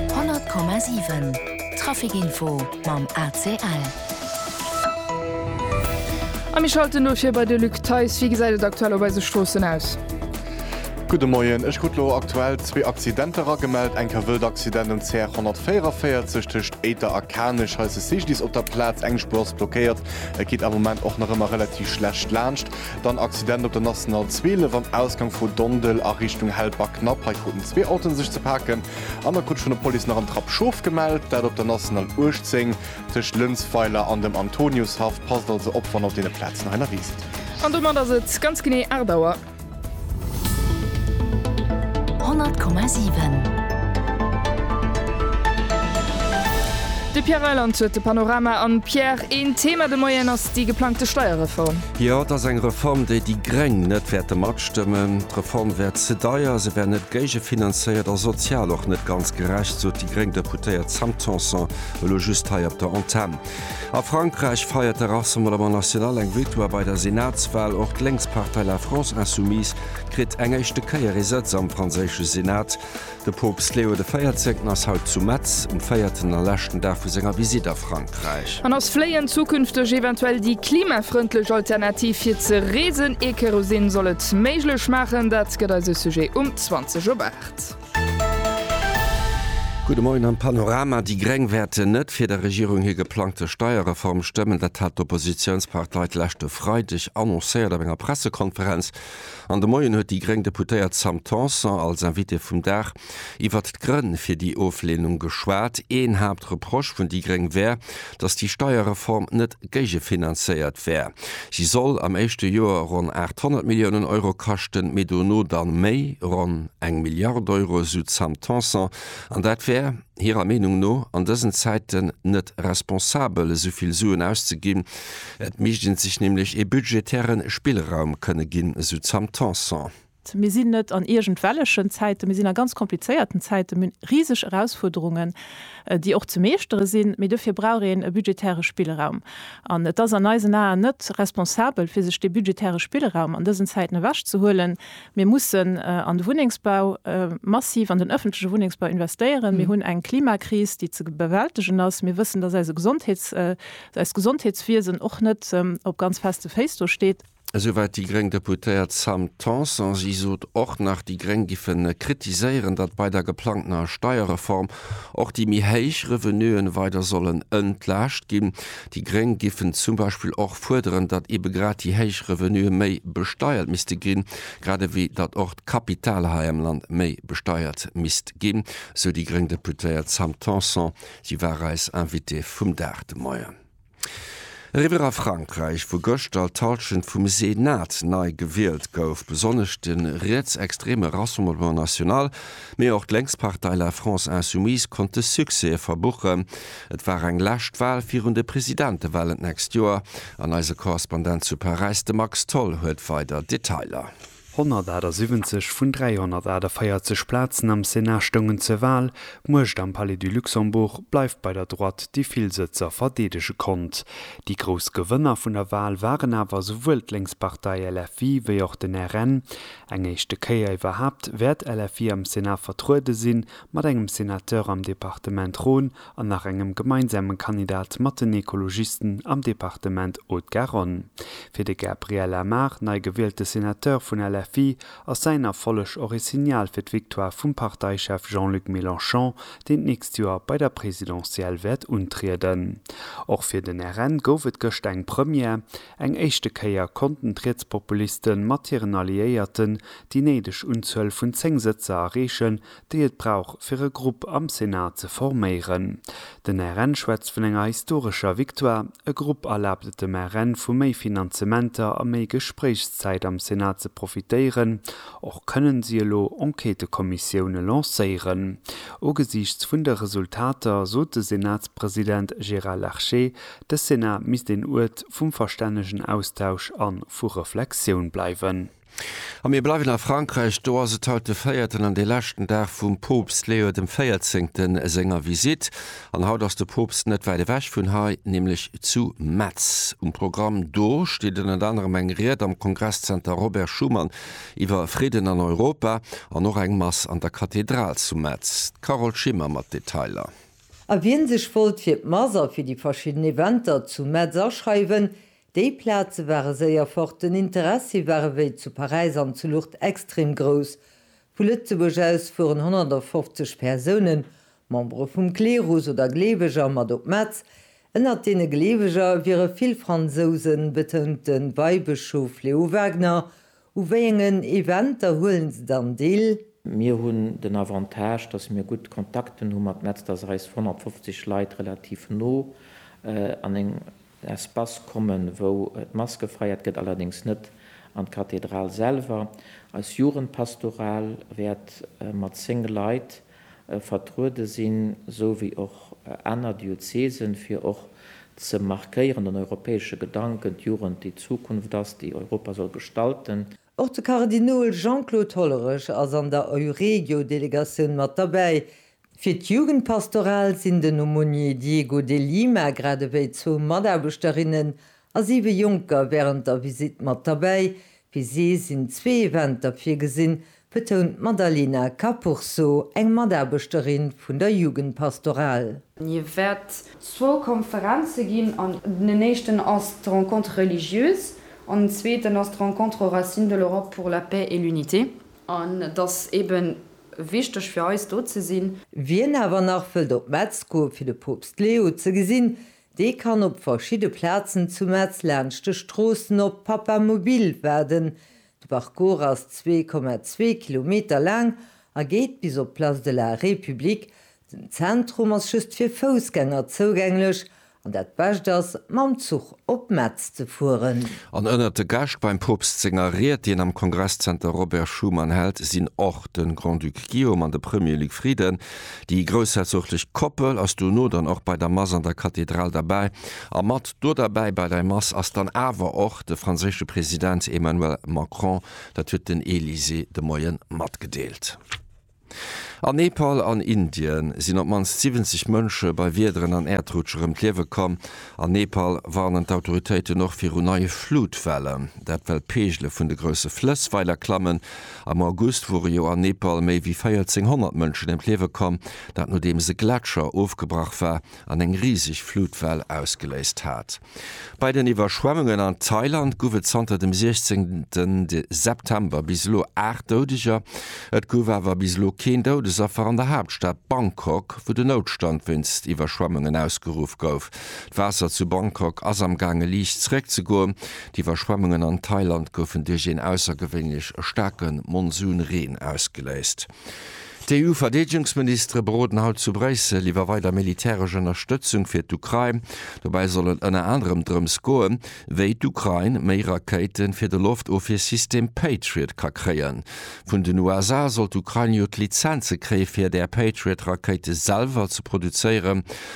100,7 Traficinfo mam ACL. A mir schalten elo vir bei de Luc Theis. Wéi gesäit et aktuell op eise Stroossen aus? Gudde Moien. Ech krut elo aktuell zwee Accidenter eragemellt. Eng Kavëll d'Accident um CR 144 tëscht Éiter a Kanech. Hei ass de Sijdis op der Plaz. Eng Spuer ass blockéiert. Et geet am Moment och nach ëmmer relativ schlecht laanscht. Dann Accident op der National 12 am Ausgang vu Dondel a Richtung Helperknapp. Hei kruten zwee Autoen sech ze paken an da krut vun der Police nach en Trapp Schof gemellt. Dat op der National 18 tëscht Lënsweiler an dem Antoniushaff. Passt also op, wann op deene Plazen hei nawee sidd. An domat ass et ganz genee 8 Auer. 100,7. De Pierre Reyland huet de Panorama. An Pierre, een Thema de Moien ass déi geplangte Steierreform. Jo, et ass eng Reform, déi déi Gréng net wäerte matstëmmen. D'Reform wär ze deier, se wär net géigefinanzéiert a sozial och net ganz gerecht, sot déi gréng Deputéiert Sam Tanson elo just hei op der Antenn. A Frankräich feiert de Rassemblement National eng Victoire bei der Senatswal. Och d'Lénkspartei La France Insoumise kritt eng éischte Kéier ee Sëtz am franséische Senat. De Poopst Leo de Véierzéngten ass haut zu Metz, um véierten a leschten Dag vu senger Visitt a Frankräich. An ass Fléien zukünfteg eventuell déi klimafrëndlech Alternativ fir ze reesen? Ee Kerosin soll et méiglech maachen, dat gëtt eise Sujet um 20 op 8. Gudde Moien am Panorama, Déi Gréng wäerten net fir der Regierung hir geplangte Steierreform stëmmen. Dat hat d'Oppositiounspartei d'leschte Freideg annoncéiert op enger Pressekonferenz. An de Moien huet déi gréng Deputéiert Sam Tanson als Invitée vum Dag iwwert d'Grënn fir déi Ofleenung geschwat. Een Haaptreproche vun déi gréng wär, datt déi Steierreform net géigefinanzéiert wär. Si soll am éischte Joer ronn 800 Milliounen Euro kaschten, mee dono dann méi, ronn eng Milliard Euro, esou d'Sam Tanson, an dat wär, hirer Meenung no, an dësen Zäiten net responsabel esou vill Suen auszeginn. Et misst ee sech nämlech ee budgetäre Spillraum kënne ginn, esou d'Sam Tanson. Mir sinn net an iergendwellechen Zäiten, mir sinn a ganz komplizéierten Zäiten. Mir hunn riseg Erausfuerderungen, déi och ze meeschtere sinn, mee dofir brauch een e budgetäre Spillraum. An et ass an eisen Aen net responsabel, fir sech dee budgetäre Spillraum an dësen Zäiten ewechzehuelen, Mir mussen an de Wunnengsbau massiv, an den öffentleche Wunnengsbau investéieren. Mir hunn eng Klimakris, déi ze bewältegen ass. Mir wëssen, dass eise Gesondheets-, eist Gesondheetswiesen och net op ganz feste Féiss do steet. Esouwäit déi gréng Deputéiert Sam Tanson. Si sot och nach, déi gréng géife kritiséieren, datt bei der geplangtener Steierreform och déi méi héich Revenuen weider sollen entlaascht ginn. Déi Gréng giffen zum Beispill och fuerderen, datt ebe grad déi héich Revenuë méi besteiert misste ginn, grad ewéi datt och d'Kapital hei am Land méi besteiert misst ginn, sou déi gréng Deputéiert Sam Tanson. Si war eis Invitée vum Dag de Moien. Eriwwer a Frankräich, wou gëschter d'Hallschent vum Senat nei gewielt gouf. Besonnesch de rietsextreme Rassemblement National Mee och d'Lénkspartei La France Insoumise konnte Succèse verbuchen. Et war eng lescht Wal virun de Presidentewalen d'nächst Joer an eise Korrespondent zu Paräis, de Max Tholl, huet weider Detailer. 178 vun 348 Plazen am Sénat stoungen zur Wal. D'Muecht am Palais du Luxembourg bleift bei der Droite, déi vill Sëtzer verdeedege konnt. Déi grouss Gewënner vun der Wal waren awer esouwuel d'Lénkspartei LFI wéi och den RN. Eng éischte Kéier iwwerhaapt wäert LFI am Sénat vertruede sinn, mat engem Sénateur am Departement Rhône an nach engem gemeinsame Kandidat mat den Ekologisten am Departement Haute-Garonne. Fir de Gabriel Amar, nei gewielte Sénateur vun LFI, ass säin Erfolleg och ee Signal fir d'Victoire vum Parteichef Jean-Luc Mélenchon, deen d'nächst Joer bei der Presidentielle wäert untrieden. Och fir den RN gouf et gëscht eng Première, Eng éischte Kéier konnten d'Rietspopuliste mat hiren Alliéierten déi néideg Unzuel vun 10 Sëtzer erreechen, déi et brauch fir e Grupp am Senat ze forméieren. Den RN schwätzt vun enger historescher Victoire. E Grupp erlaabt et dem RN vu méi Finanzementer a méi Gespréichszäit am Senat ze profitéieren. Och kënnen si elo Enquêtëkommissioune lancéieren. Ugesiichts vun de Resultater sot de Senatspresident Gérard Larcher, De Senat misst een Uert vum verstännegen Austausch a vu Reflexioun bleiwen. A mir bleiwen a Frankräich. Do ass et haut de véierten an dee leschten Dag vum Poopst Léo dem Véierzéngten senger Visitt. An haut ass de Poopst net wäit ewech vun hei, nämlech zu Metz. Um Programm do steet ënnert anerem eng Ried am Kongresszenter Robert Schuman iwwer Fridden an Europa an och eng Mass an der Kathedral zu Metz. D'Carole Schimmer mat Detailer. A wien sech wollt fir d'Mass a fir déi verschidden Eventer zu Metz aschreiwen, déi Plaze ware séier fort. Den Interessi war ewéi zu Paräis an zu Lourdes extrem grouss. Vu Lëtzebuerg aus fueren 150 Persounen, Membere vum Klerus oder Gleeweger, mat op Metz. Ënnert deene Gleeweger wiere vill Fransousen, betount de Weibëschof Leo Wagener U wéiengen Eventer huelen se dann deel? Mir hunn den Avantage, dass mir gutt Kontakten hu mat Metz, dass eis 150 Leit relativ no an en Espace kommen, wou d'Mass gefeiert gëtt, allerdéngs net an d'Kathedral selwer. Eis Jugendpastoral wäert mat 10 Leit vertruede sinn, esou wéi och aner Diözesen, fir och ze markéieren, den europäesche Gedanken, d'Jugend déi d'Zukunft ass, déi Europa soll gestalten. Och de Kardinol Jean-Claude Hollerich ass an der Euregio-Delegatioun mat derbäi. Fir d'Jugendpastoral sinn den Aumônier Diego de Lima grad ewéi zwou Mataarbechterinnen a siwe Jonker wärend der Visitt mat derbäi. Fir si sinn zwee Eventer virgesinn, betount d'Madalena Capurso, eng Mataarbechterin vun der Jugendpastoral. Et wäert zwou Konferenze ginn, an den éischten ass d'Rencontre religieuse an den zweeten ass d'Rencontre aux racines de l'Europe pour la paix et l'unité. An et ass ebe wichteg fir eis, do ze sinn. Wien awer nach wëllt op Metz goe fir de Poopst Leo ze gesinn, Dee kann op verschidde Plazen zu Metz laanscht de Stroossen op Papamobil waarden. De Parcours ass 2,2 Kilometer laang a geet bis op d'Place de la République. Den Zentrum ass just fir Foussgänger zougänglech an dat Bescht ass, mam Zuch op Metz ze fueren. An ënnert de Gäscht beim Poopst senger Ried, déi en am Kongresszenter Robert Schuman hält, sinn och de Grand-Duc Guillaume an de Premier Luc Frieden. Déi groussherzoglich Koppel ass dono dann och bei der Mass an der Kathedral derbäi, a mat do derbäi bei dei Mass ass dann awer och de franséische President Emmanuel Macron, dat huet den Elysée de Moien matgedeelt. An Nepal an Indien sinn op d'mannst 70 Mënsche bei Wiederen an Äerdrutschë rëm d'Liewe komm. An Nepal warnen d'Autoritéiten och viru neie Flutwellen, dat well d'Peegele vun de grousse Flëss weider klammen. Am August wore jo an Nepal méi wéi 1400 Mënschen ëm d'Liewe komm, dat nodeems e Gletscher ofgebrach war an eng riseg Flutwell ausgeléist hat. Bei den Iwwerschwemmungen an Thailand guff et zanter dem 16 September bis elo 8 Doudeger. Et guff awer bis elo keen Doudesaffer an der Haaptstad Bangkok, wou den Noutstand wéinst Iwwerschwemmungen ausgeruff gouf. D'Waasser zu Bangkok ass am gaange liicht zeréck ze goen. D'Iwwerschwemmungen an Thailand goufen duerch een aussergewéinlech staarke Monsunreen ausgeléist. D'EU-Verdeedegungsministere beroden haut zu Bréissel iwwer weider militäresch Ënnerstëtzung fir d'Ukrain. Dobäi soll et ënner anerem drëms goen, wéi d'Ukrain méi Rakéite fir de Loftofwiersystem Patriot ka kréien. Vun den USA soll d'Ukrain jo d'Lizenze kréie fir där Patriot-Rakéite selwer ze produzéieren.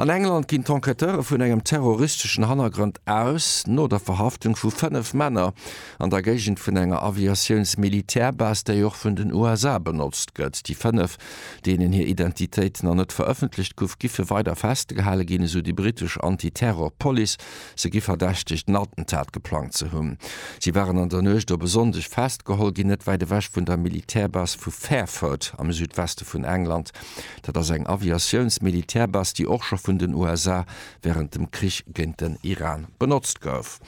An England ginn d'Enquêteure vun engem terroristeschen Hannergrond aus, no der Verhaftung vu 5 Männer an der Géigend vun enger Aviatiouns-Militärbase, déi och vun den USA benotzt gëtt. Déi 5, deenen hir Identitéit nach net verëffentlecht guff, giffe weider festgehale ginn, esou déi britesch Anti-Terror-Police. Se gi verdächtegt, en Attentat geplangt ze hunn. Si waren an der Nuecht op e Sonndeg festgeholl ginn, net wäit ewech vun der Militärbase vu Fairford am Südweste vun England. Dat ass eng Aviatiouns-Militärbass, déi och scho vun den USA wärend dem Krich géint den Iran benotzt gouf.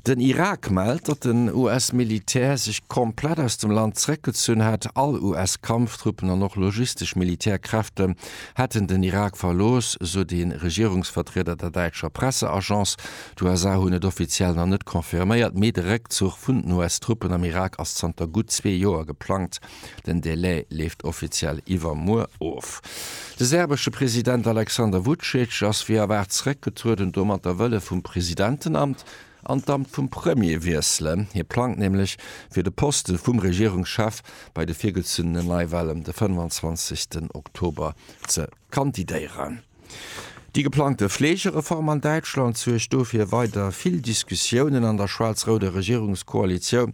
Den Irak mellt, datt den US-Militär sech komplett aus dem Land zeréckgezunn hätt. All US-Kampftruppen an och logistesch Militärkräfte hätten den Irak verlooss, sot ee Regierungsvertrieder der däitscher Presseagence. D'USA hunn et offiziell nach net confirméiert, mee de Réckzuch vun den US-Truppen am Irak ass zanter gutt zwee Joer geplangt. Den Delai leeft offiziell iwwermuer of. De serbesche President Aleksander Vucic ass wéi erwaart zeréckgetrueden, domatter wëll e vum Presidentenamt an d'Amt vum Premier wiesselen. Hie plangt nämlech, fir de Poste vum Regierungschef bei de virgezunene Neiwalen de 25 Oktober ze kandidéieren. Déi geplangte Fleegereform an Däitschland suergt do fir weider vill Diskussiounen an der schwaarz-rouder Regierungskoalitioun.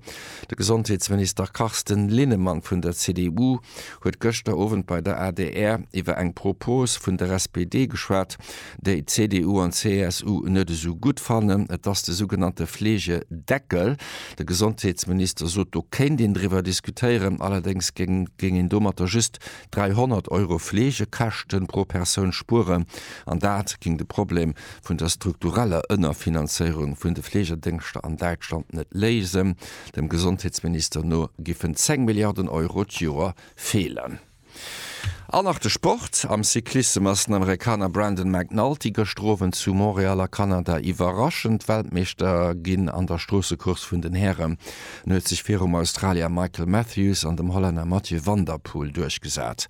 De Gesondheetsminister Carsten Linnemann vun der CDU huet gëschter Owend bei der adr iwwer eng Propos vun der SPD geschwat, déi d'CDU an d'CSU net esou gutt fannen. Et ass de sougenannte Fleegedeckel. De Gesondheetsminister sot, do kéint een driwwer diskutéieren, allerdéngs géing een domatter just 300 Euro Fleegekäschten pro Persoun spueren an dat géing de Problem vun der struktureller Ënnerfinanzéierung vun de Fleegedéngschter an Däitschland net léisen. Dem Gesondheetsminister no giffen 10 Milliarden Euro d'Joer feelen. An nach de Sport, Am Cyclissem ass den Amerikaner Brandon McNulty gëschter Owend zu Montréal a Kanada iwwerraschend Weltmeeschter ginn an der Stroossecourse vun den Hären. En huet sech virum Australier Michael Matthews an dem Hollänner Mathieu van der Poel duerchgesat.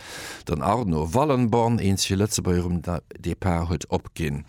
Den Arno Wallenborn, eens fir Lëtzebuerg um Depart, huet opginn.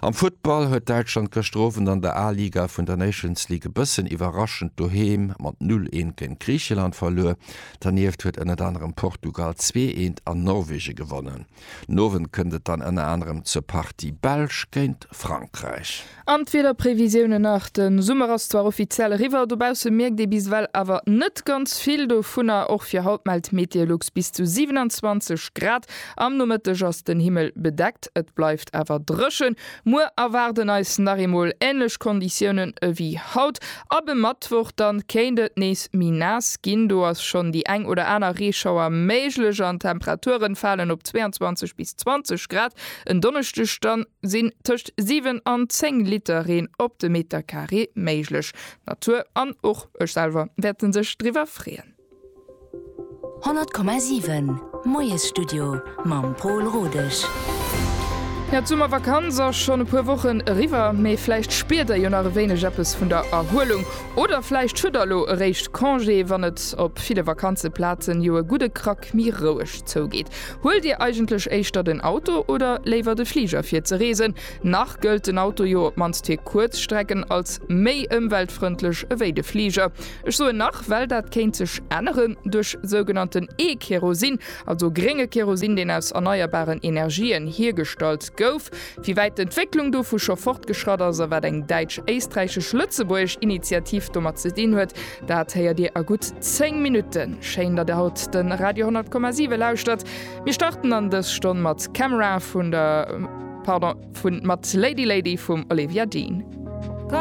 Am Futtball huet Däitschland gëschter Owend an der A-Liga vun der Nations League e bëssen iwwerraschend doheem mat 0, 1 géint Griicheland verluer. Dernieft huet ënnert anerem Portugal 2, 1 an Norwegen gewonnen. Den Owend kënnt et dann ënner anerem zur Partie Belsch géint Frankräich. An d'Wiederprevisiounen nach, de Summer ass zwar offiziell eriwwer, dobausse mierkt ee bis ewell awer net ganz vill dovunner. Och fir haut mellt Meteolux bis zu 27 Grad. Am Nomëtteg ass den Himmel bedeckt, et bleift awer dréchen. Muer erwaarden eis nach eemol änlech Konditiounen ewéi haut. Ab e Mëttwoch da kéint et nees méi naass ginn, do ass schonn déi eng oder aner Reeschauer méiglech an d'Temperature falen op 22 bis 20 Grad. En Donneschdeg dann. sinn tëscht 7 an 10 Liter Reen op de Meter Carré méiglech. D'Natur an och ech selwer wäerte sech driwwer freeën. 100,7 Moiesstudio mam Pol Rodesch. Jo, d'Summervakanz ass schonn e puer Wochen eriwwer, mee vläicht spiert der jo nach e wéineg eppes vun der Erhuelung. Oder vläicht hutt der elo eréischt Congé, wann et op ville Vakanzeplazen jo e gudde Krack méi roueg zougeet. Huelt Dir eigentlech éischter den Auto oder léiwer de Fliger fir ze reesen? Nach gëllt den Auto jo op mannst fir kuerz Strecken als méi ëmweltfrëndlech ewéi de Fliger. Ech soen nach, well dat kéint sech änneren duerch sougenannten E-Kerosin, also grénge Kerosin, deen aus erneierbaren Energien hiergestallt gouf. Wéi wäit d'Entwécklung dovu scho fortgeschratt ass a wat eng däitsch-éisträichesch-lëtzebuergesch Initiativ domat ze dinn huet, dat héiert Dir a gutt 10 Minutten. Schéin, datt Dir haut de Radio 100,7 lauschtert. Mir starten an dës Stonn mat Camera vun der, pardon, vun mat Lady Lady vum Olivia Dean.